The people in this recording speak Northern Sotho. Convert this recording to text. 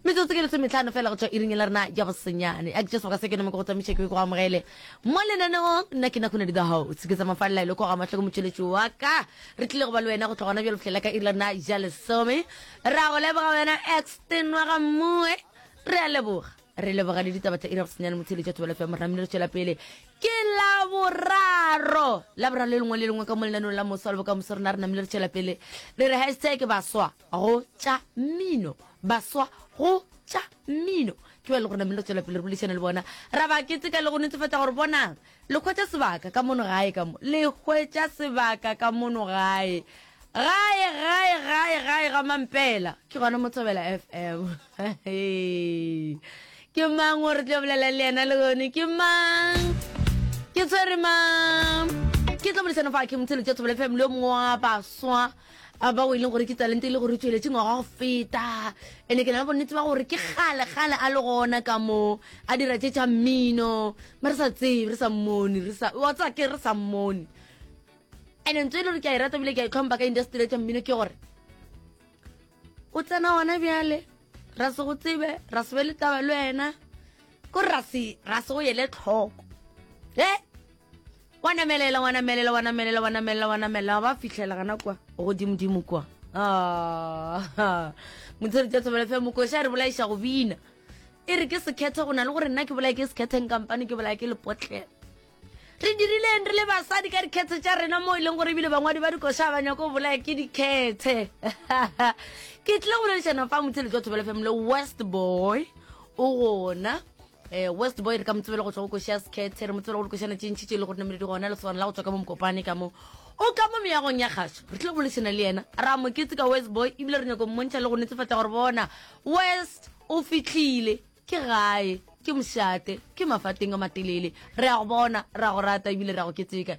Metsotso ke lesometlhano fela go tswa iring la rena ya bosenyane a ke jesu ka se ke nome go tsamiša ke go amogele mo lenaneong nna ke nakgone di the house ke tsamafalela ile go ga matlhoko motšweletši wa ka re tlile go ba le wena go tlogona bjalo fihlela ka iri la rena ja lesome ra go leboga wena exten wa ga mmue re a leboga re leboga le ditaba tsa iri ya bosenyane motheletša thobela fe moramile re tšwela pele ke la boraro la boraro le lengwe le lengwe ka mo lenanong la moso le bokamoso rena re namile re tšwela pele re re hashtag baswa go tša mmino baswa go tša mmino ke ba le gore namelo tswela pele re bolešane le bona ra ba keteka le go netefatša gore bonang le hwetša sebaka ka mono gae ka mo le hwetša sebaka ka mono gae gae gae gae gae ga mampela ke gona motsobela f m ke mang o re tlo bolela le yena le gone ke mang ke tshwere mang ke tlo bolesana fa ke motsheletša thobela fm le yo mongwe wa baswa a bao e leng gore ke talente e le gore o tšweletše ngwaga go feta ene ke na le bonnete ba gore ke gale gale a le gona ka mo a dira tše tša mmino ma re sa tsebe re sa mmone re sa wa tsa ke re sa mmone ene ntse e le gore ke a e rata bile ke a itlhompha ka industry tša mmino ke gore o tsena ona bjale ra se go tsebe ra se be le taba le wena ko ra se ra se go yele tlhoko e wa namelela wa namelela wa namelela wa namelela wa namelela ba fitlhela gana kwa godimodimo kwa ah, motshedi tsa thobela fe mokoša re bolaiša go bina e re ke sekgethe go na le gore nna ke bolae ke sekgetheng kampane ke bolae ke lepotleng re dirileng re le basadi ka dikgethe tša rena mo e leng gore ebile bangwadi ba dikoša ba nyako bolaya ke dikgethe ke tlile go boledišana fa motsheletse wa thobelefemle west boy o gona Eh, west boy re ka motsebele go tswa go košia sekhethe re motsebele go dikošana tše ntšhi tše le gore nameledi gona lesogana la go tswa ka mo mokopane ka mo o ka mo meyagong ya kgaso re tlile go bolešana le yena ra moketse ka west boy ebile re nyako mmontšha le go netefatsa gore bona west o fitlhile ke gae ke mošate ke mafateng a matelele re ya go bona re ya go rata ebile re ya go keteka